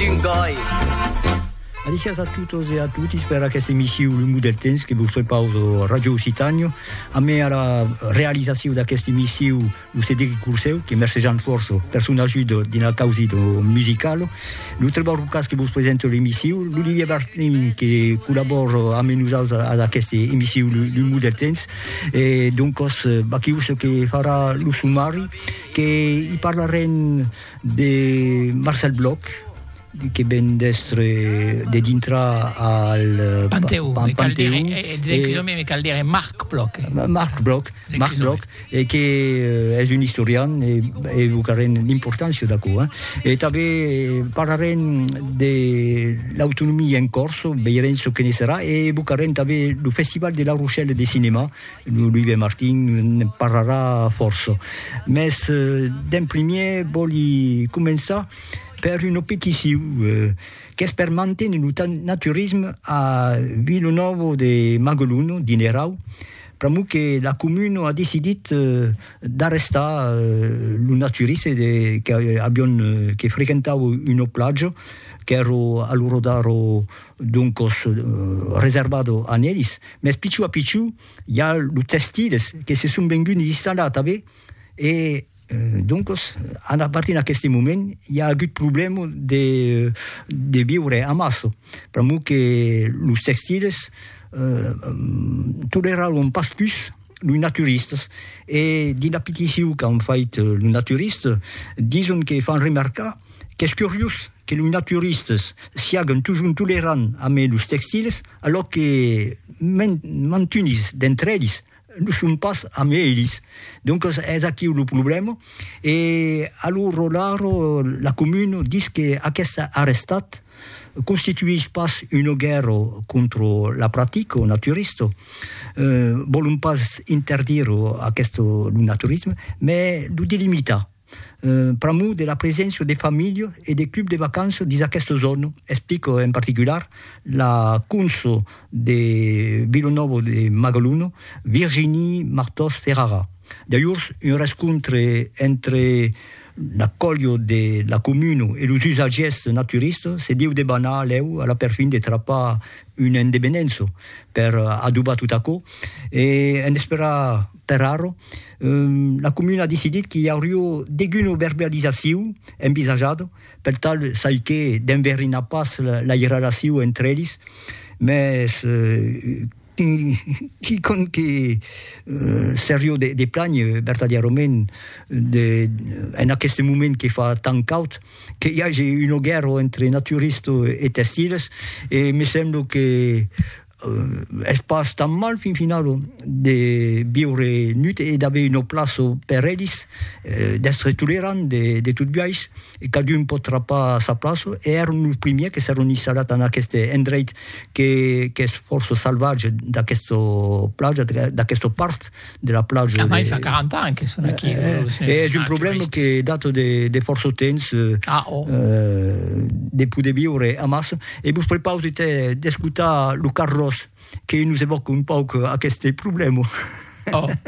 d'un gòi. Alicias a totes e a totis per aquesta emissiu Lungo del temps que vos prepaus a Radio Occitània. A mai ara realizaciu d'aquesta emissiu lo Cedric Curseu, que mercejan fòrça per son ajuda dins la causa do musical. Lo Trevor Rucas que vos presenta l'emissiu, l'Olivier Bartlin que collabora a menusals a d'aquesta emissiu Lungo del temps. E donc, baquiu ce que farà lo sumari, que i parlarem De Marcel Bloch, que ven d'èstre de dintra al Panteu, al Panteu, me cal dire Marc Bloch, Marc Bloch, Marc Bloch, e que es un istorian e evocarem l'importància d'aquò, e tanben parlarem de l'autonomia en Còrsega, veirem çò que ne serà, e evocarem tanben lo festival de La Rochelle de cinema, Lo Louis de Martin ne parlarà fòrça, mès d'en primièr vòli començar per una peticion qu'es per manténer lo naturisme a Vilanòva de Magalona, Dinerau, pr'amor que la comuna a decidit d'arrestar lo naturiste de que avián que frequentava una platja qu'èra a l'ora d'ara doncos reservado a nelis, mès pichou a pichou i a los tèstiles que se son venguts installar tanben e doncos a partir d'aqueste moment i a agut problèma de de viure amassa pr'amor que los tèstiles toleraràn pas pus los naturistas e dins la petició qu'an fait los naturistas dison que fan remarcar qu'es curiós que los naturistas siaguen totjorn tolerants amé los textils, alò que mantunis d'entre elis lo son pas amé elis. Doncas es aquiu lo problèma e a lo rolar la comuna dis que aqueste arrestat constituís pas una guèrra contra la practica naturista, vòlon pas interdir aqueste lo naturisme, mai lo delimitar. pr'amor de la preséncia de familha e de club de vacanças dins aquesta zòna, explica en particular la conso de Vila Nova de Magalona, Virginie Martós Ferrara. D'ajorns, un rescontre entre la colha de la comuna e los usatgièrs naturistas se deu debanar lèu a la perfin de trapar una endevenença per adobar tot aquò e en esperar per ara La comuna a decidit qu'i aurió deguna verbalizacion envisajada, per tal çai que d'enverinar pas la irrelacion entre elis, mès quicòm que serió de plànher vertadièrament en aqueste moment que fa tant caud, que i age una guèrra entre naturistas e testiles, e me sembla que es pas tan mal fin finalo de viure nut e d'aver una plaça per elis, d'èstre tolerant de, de tot biais, e cadun pòt trapar sa plaça, e èron los primièrs que s'èron installat en aqueste endreit que, qu'es fòrça salvatge d'aquesta plaja, d'aquesta part. de la plaja. Ah, mai fa 40 ans que son aquí. Eh, eh, eh, és un problème que date de, de força temps. Ah, oh. Eh, de poder viure a mas. E vos prepausi d'escutar lo Carlos, que nos evoca un pauc aquest problème. Oh.